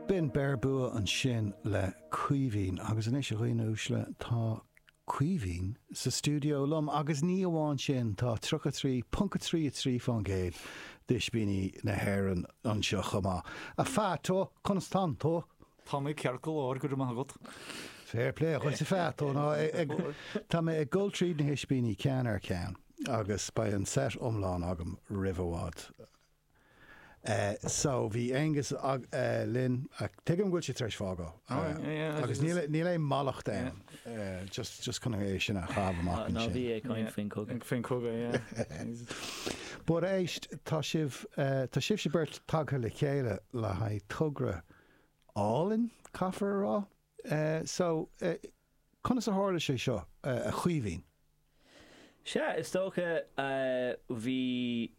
B'in Beir Bua ansin le Caoimhín agus anois, a dhaoine uaisle, tá Caoimhín sa stiúideo liom agus ní amháin sin, tá 33.33 fán gcéad d'ispíní na hÉireann anseo chomh maith. A Pheaito, conas tá tú? Tá mé ceart go leor, go raibh maith agat. Fair play dhuit a Pheaito. No, tá mé ag dul tríd na hispíní ceann ar ceann agus beidh an set iomlán agam roimh i bhfad. so bhí Aonghus linn, tuigim go bhfuil siad tar éis fágáil agus níl aon mhallacht ann, just chun é sin a chaitheamh amach ansin. Ná bí ag caint faoin chogadh. Faoin chogadh, yeah. But éist, tá sibh, tá sibhse beirt tagtha le chéile le haghaidh togra álainn, caithfear a rá? Eh, so, eh, conas a tharla sé seo, eh, a Chaoimhín? Sea, is dócha, eh, bhí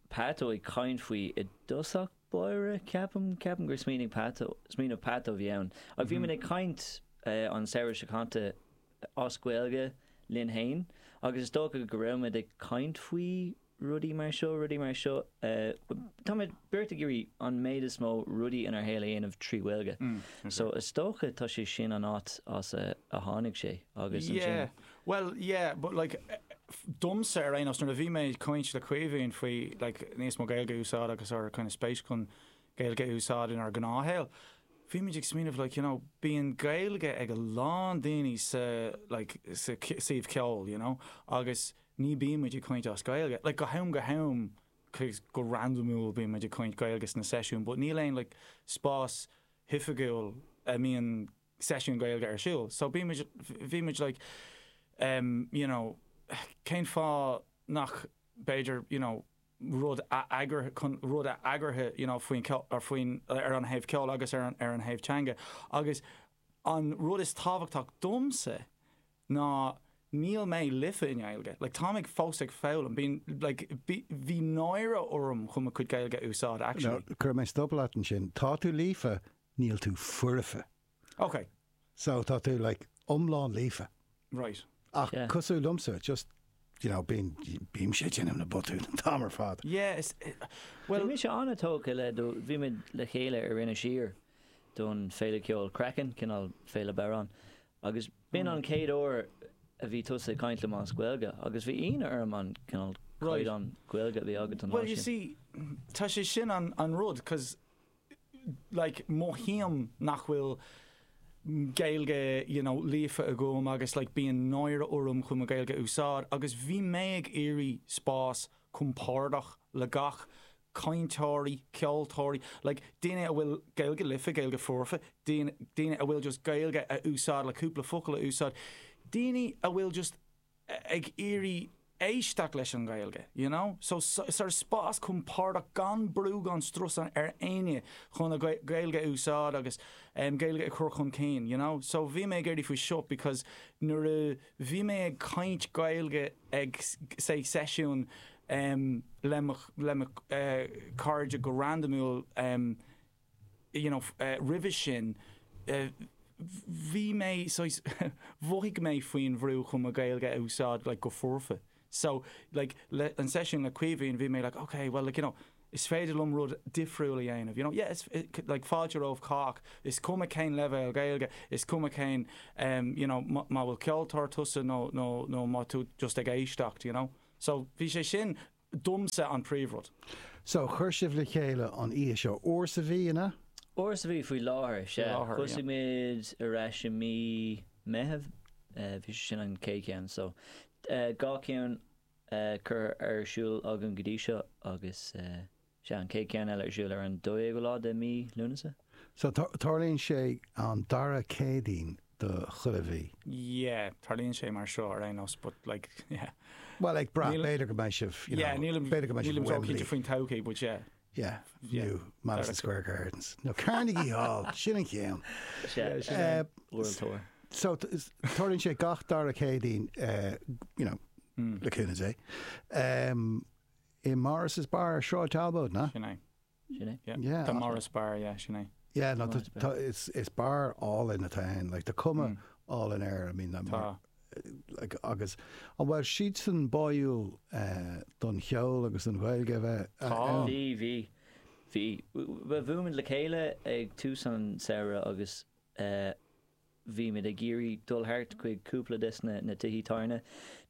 Peaito ag caint faoi i dtosach báire, ceapaim, ceapaim gur smaoinigh Peaito, smaoineamh Peaito a bhí ann. Ach bhí muid ag caint, eh, an samhradh seo caite as Gaeilge linn fhéin agus is dócha go raibh muid ag caint faoi, rudaí mar seo, rudaí mar seo. Táimid beirt ag iarraidh an méid is mó rudaí inár shaol a dhéanamh trí Ghaeilge. So is dócha tá sé sin an áit as a tháinig sé agus ansin. Bhuel, yeah, but like, domsa ar aon nós, nuair a bhí mé ag caint le Caoimhín faoi like níos mó Gaeilge a úsáid agus ár kind of spéis chun Gaeilge a úsáid inár ngnáthshaol, bhí muid ag smaoineamh like, you know, bíonn Gaeilge ag a lán daoine sa like sa suíomh ceoil, you know, agus ní bíonn muid ag caint as Gaeilge, like go ham go ham go randamúil bíonn muid ag caint Gaeilge sna seisiúin but níl aon like spás hoifigiúil a mbíonn seisiúin Gaeilge ar siúl so bhí muid like em you know cén fáth nach b'fhéidir you know rud a eagrú, rud a eagraithe you know faoin ar faoin ar an thaobh ceoil agus ar an ar an thaobh teanga agus an rud is tábhachtach domsa ná níl mé líofa i nGaeilge, like táim ag fós ag foghlaim, bíonn, like bhí, bhí náire orm chun mo chuid Gaeilge a úsáid actually. Now, cuirfidh mé stop leat ansin, tá tú líofa, níl tú foirfe. Ok. So, tá tú, like, iomlán líofa. Right. Ach Yeah. cosúil liomsa, just, you know, bíonn, bím sé ag déanamh na botúin an t-am ar fad. Yeah, is, eh, Bhí well, mise an-tógtha le do, bhí muid le chéile ar Inis Oírr don féile ceoil Craiceann, cineál féile bodhrán, Agus b'in an chéad uair a bhí tusa ag caint liom as Gaeilge, agus bhí ionadh orm an cineál caighdeán Gaeilge a bhí agat an lá sin. Bhuel, you see, tá sé sin an rud, cos, like, mothaím nach bhfuil Gaeilge, you know, líofa agam agus, like, bíonn náire orm chun mo Ghaeilge a úsáid, agus bhí mé ag iarraidh spás compordach le gach cainteoirí, ceoltóirí, like daoine a bhfuil Gaeilge liofa, Gaeilge foirfe, daoine, daoine a bhfuil just Gaeilge a úsáid, le cúpla focal a úsáid, daoine a bhfuil just ag iarraidh éisteacht leis an nGaeilge, you know. So sort of spás compordach gan brú gan strus ar éinne chun a Gaeilge a úsáid agus Gaeilge a chur chun cinn, you know. So bhí mé ag éirí faoi seo because nuair a. Bhí mé ag caint Gaeilge ag seisiún le, le mo chairde go randamúil you know roimhe sin. Bhí mé saghas mhothaigh mé faoi bhrú chun mo Ghaeilge a úsáid like go foirfe. So, like, le, an seisiún le Caoimhín, bhí mé like, ok, bhuel, like, you know, is féidir liom rud difriúil a dhéanamh, you know, yeah, is, like, fáilte roimh chách, is cuma cén leibhéal Gaeilge, is cuma cén, em, you know, má, má bhfuil ceoltóir tusa nó, nó, nó má tú just ag éisteacht, you know. So, bhí sé sin, domsa, an príomhrud. So, chuir sibh le chéile an oíche seo, uair sa mhí, an ea? Uair sa mhí, faoi láthair, sea. Faoi láthair, yeah. Thosaigh muid ar ais i mí Meitheamh, eh, bhí sé sin an chéad cheann, so, dhá ceann curtha ar siúl agam go dtí seo agus sea, an chéad cheann eile ar siúl ar an 12ú lá de Mí Lúnasa. So, tarlaíonn sé an dara Céadaoin de chuile mhí? Yeah, tarlaíonn sé mar seo ar aon nós but like, yeah. Bhuel, ag brath, b'fhéidir go mbeidh sibh, you know, b'fhéidir go mbeidh sibh i Wembley. Nílim cinnte faoin todhchaí but yeah. Yeah, nó Madison Square Gardens. Nó Carnegie Hall, sin an ceann. So, tarlaíonn sé gach dara Céadaoin, you know, le cúnamh Dé, i Morris's Bar, Sráid Talbot, na? Sin é. Sin é. Yeah. Tá Morris Bar, yeah, sin é. Yeah, no, is bar álainn atá ann, like, tá cuma álainn air, I mean, agus an raibh siadsan báúil don cheol agus don Ghaeilge a bheith ann? Bhí, bhí. Bhí. Bhuail muid le chéile ag tús an tsamhraidh agus bhí muid ag iarraidh dul thart chuig cúpla de na tithe tábhairne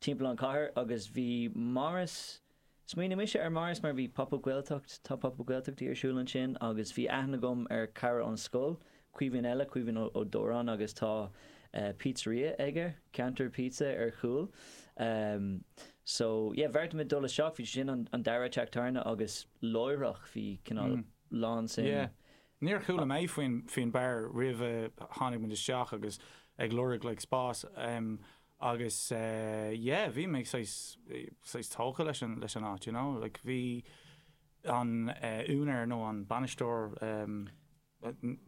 timpeall an chathair agus bhí Morris Smaoinigh mise ar Morris mar bhí Pop Up Gaeltacht, tá Pop Up Gaeltachtaí ar siúl ansin agus bhí aithne agam ar chara ón scoil, Caoimhín eile, Caoimhín Ó Dóráin agus tá pizzeria aige, Ceantar Pizza, ar chúl. So, yeah, bheartaigh muid dul isteach, bhí sé sin an dara teach tábhairne agus láithreach bhí cineál lánsuim. Yeah. Níor chuala mé faoin bar roimh a tháinig muid isteach agus ag lorg like spás. Agus yeah, bhí mé saghas, saghas tógtha leis an, leis an áit, you know, like bhí an úinéir nó an bainisteoir,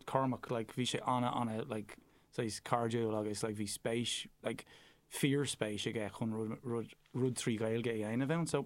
Cormac, like bhí sé ana, ana like saghas cairdiúil agus like bhí spéis, like fíorspéis aige chun rud, rud, rud trí Ghaeilge a dhéanamh ann. So.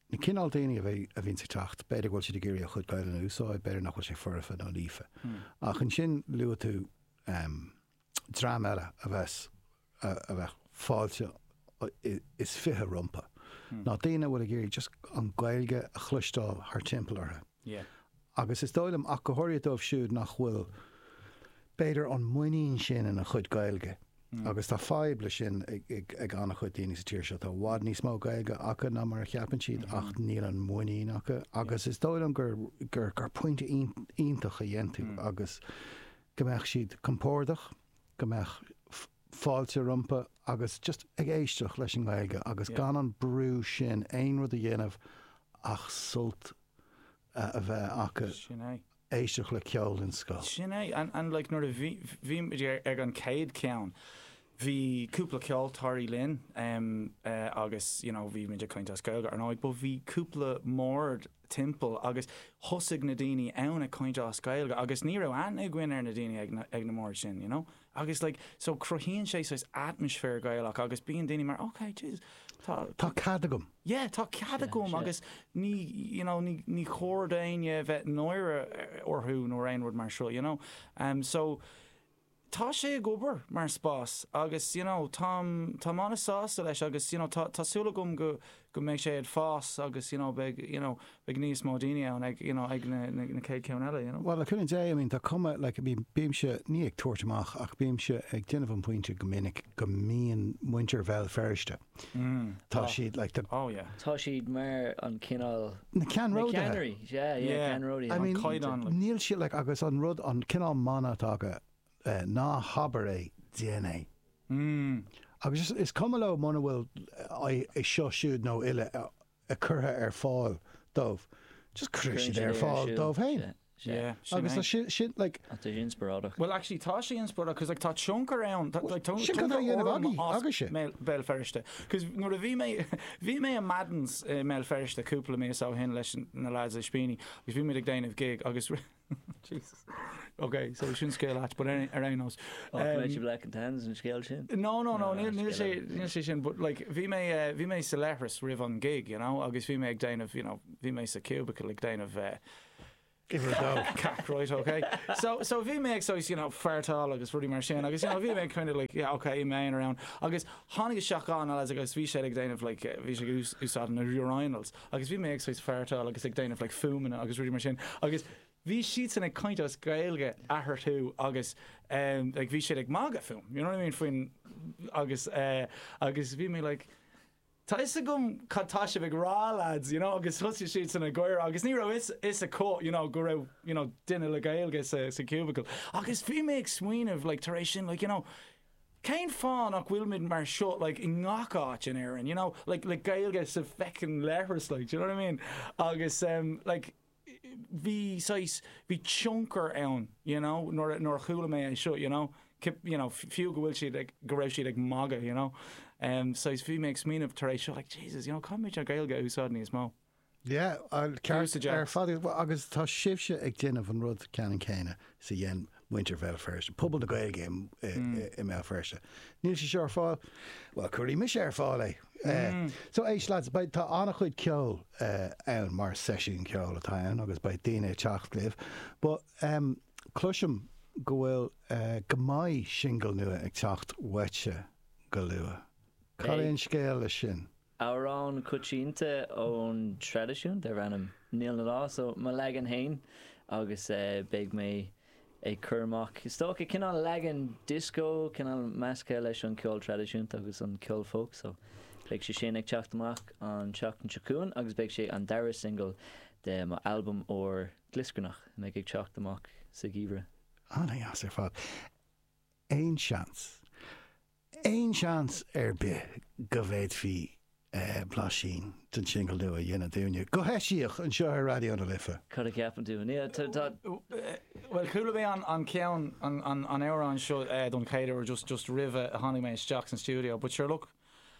Na cineál daoine a bheidh, a bhíonns ag teacht, b'fhéidir go bhfuil siad ag iarraidh a chuid Gaelainne a úsáid, b'fhéidir nach bhfuil sé foirfe nó líofa. Ach ansin luaigh tú dream eile a bheas, a bheadh fáilte is fiche rompu, ná daoine a bhfuil ag iarraidh just an Ghaeilge a chloisteáil thar timpeall orthu. agus is dóigh liom, go háirithe dóibh siúd nach bhfuil, b'fhéidir, an muinín sin ina chuid Gaeilge, agus tá fadhb leis sin ag an-chuid daoine sa tír seo, tá i bhfad níos mó Gaeilge acu ná mar a cheapann siad, ach níl an mhuinín acu, agus is dóigh liom gur pointe iontach a dhein tú, agus go mbeadh siad compordach, go mbeadh. fáilte rompu agus just ag éisteacht leis an nGaeilge agus gan an brú sin aon rud a dhéanamh ach sult a bheith acu, éisteacht le ceol den scoth. Sin é, and like nuair a bhí, bhí muid ag an chéad cheann, bhí cúpla ceoltóirí linn agus you know bhí muid ag caint as Gaeilge ar ndóigh but bhí cúpla mbord timpeall agus thosaigh na daoine ann ag caint as Gaeilge agus ní raibh aithne againn ar na daoine ag na mbord sin, you know. Agus like so cruthaíonn sé saghas atmaisféar Gaelach agus bíonn daoine mar ok jeez tá Tá cead agam. yeah tá cead Sea, agam sea. agus ní you know ní ní chóir d'éinne a bheith náire orthu nó aon rud mar seo you know. Em so tá sé ag obair mar spás agus you know táim táim an-sásta leis agus you know tá tá súil agam go go mbeidh sé ag fás agus you know beidh you know beidh níos mó daoine ann ag you know ag na na céad ceann eile you know. Bhuel le cúnamh Dé I mean tá cuma like I mean bímse ní ag tabhairt amach ach bímse ag déanamh an pointe go minic go mbíonn muintir Bhéal Feirste tá siad like tá oh yeah tá siad mar an cineál na ceannródaithe yeah yeah ceannródaithe an caighdeán níl siad like agus an rud an cineál mana atá acu Ná habair é, déan é. Agus is is cuma leo muna bhfuil é seo siúd nó uile curtha ar fáil dóibh, just cuireann siad é ar fáil dóibh féin. Agus tá sin, sin, like. Ach tá sé inspioráideach. Bhuel, actually, tá sé inspioráideach, 'cause like tá tionchar ann, tá, like, tionchar. Sin cad a dhéanamh agaí, agaise. Mé, Béal Feirste. 'Cause nuair a bhí mé, bhí mé i Madden's i mBéal Feirste cúpla mí ó shin leis na lads Ispíní agus bhí muid ag déanamh gig agus rinne, Jesus. Ok, so sin scéal ait, but ar ar aon nós. Ó, go mbeidh sé black and tans an scéal sin. No, no, no, níl níl sé scéal. níl sé sin, but like bhí mé eh, bhí mé sa leithreas roimh an gig, you know, agus bhí mé ag déanamh, you know, bhí mé sa cubicle ag déanamh eh, Give her a go. cac, right, ok. So, so bhí mé ag so, you know, feartáil agus rudaí mar sin, agus you know, bhí mé kind of like, yeah, ok, im aonar ann, agus tháinig isteach anall as agus bhí sé ag déanamh like, eh, bhí sé ag ús- úsáid na urinals. agus bhí mé ag, saghas, fartáil agus ag déanamh like fuaimeanna agus rudaí mar sin agus bhí siadsan ag caint as Gaeilge eathartu agus em like bhí siad ag magadh fúm, you know what I mean faoin agus eh agus bhí mé like tá 'fhios agam cad tá sibh ag rá lads you know agus thosaigh siadsan ag gáire agus ní raibh 'fhios 'fhios acu you know go raibh you know duine le Gaeilge sa sa cubicle agus bhí mé ag smaoineamh like tar éis sin like you know Cén fáth nach bhfuilimid mar seo like i ngach áit in Éirinn, you know, like le Gaeilge sa feckin' leithreas like, d'you know what I mean? Agus em like bhí saghas, bhí tionchar ann d'you know nuair a, nuair a chuala mé é seo d'you know, you know fiú go bhfuil siad ag, go raibh siad ag magadh d'you know, em saghas bhí mé ag smaoineamh tar éis seo like Jesus you know caithfimid an Ghaeilge a úsáid níos mó. Yeah, uh, ceart. Cúiseanna deasa ar fad iad. Well, agus tá sibhse ag déanamh an rud ceannann céanna is a dhein muintir Bhéal Feirste, pobal na Gaeilge i, i, i, i mBéal Feirste. Níl sé seo ar fáil? Well, cuirfidh mise ar fáil é. Eh, so, éist, lads, beidh, tá an-chuid ceoil, eh, ann, mar seisiún ceoil atá ann agus beidh daoine ag teacht libh. But, em, cloisim go bhfuil, eh, go mbeidh singil nua ag teacht uaitse go luath. Cad é an scéal leis sin? Amhrán coitianta ón traidisiún darb ainm Níl na Lá so mo leagan féin agus beidh mé ag cur amach is dócha cineál leagan dioscó, cineál measctha leis an ceol traidisiúnta agus an ceol folk so beidh sé sin ag teacht amach an tseachtain seo chugainn agus beidh sé an dara singil de mo albam úr glioscarnach a mbeidh ag teacht amach sa gheimhreadh. Ana-dheas ar fad. Aon seans. Aon seans ar bith go bhféadfaí blaisín den singil nua a dhéanamh dúinne, go heisiach, anseo ar Raidió na Life? Cad a cheapann tú, an ea? Tá. Bhuel, chuala mé an ceann, an amhrán seo don chéad uair just, just roimhe a tháinig mé isteach san stiúideo but sure look,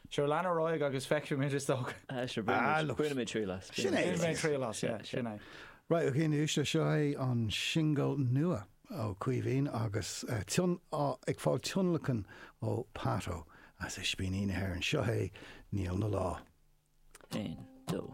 sure lean ar aghaidh agus feicfimid is dócha. Ah, sure, bainimid triail as. Sin é. Bainimid triail as, yeah, sin é. Right, ok, anois, seo é an singil nua. Ó Caoimhín, agus ag fáil tionlacain ó Pato as Ispíní na hÉireann. Seo é Níl 'na lá. 1, 2.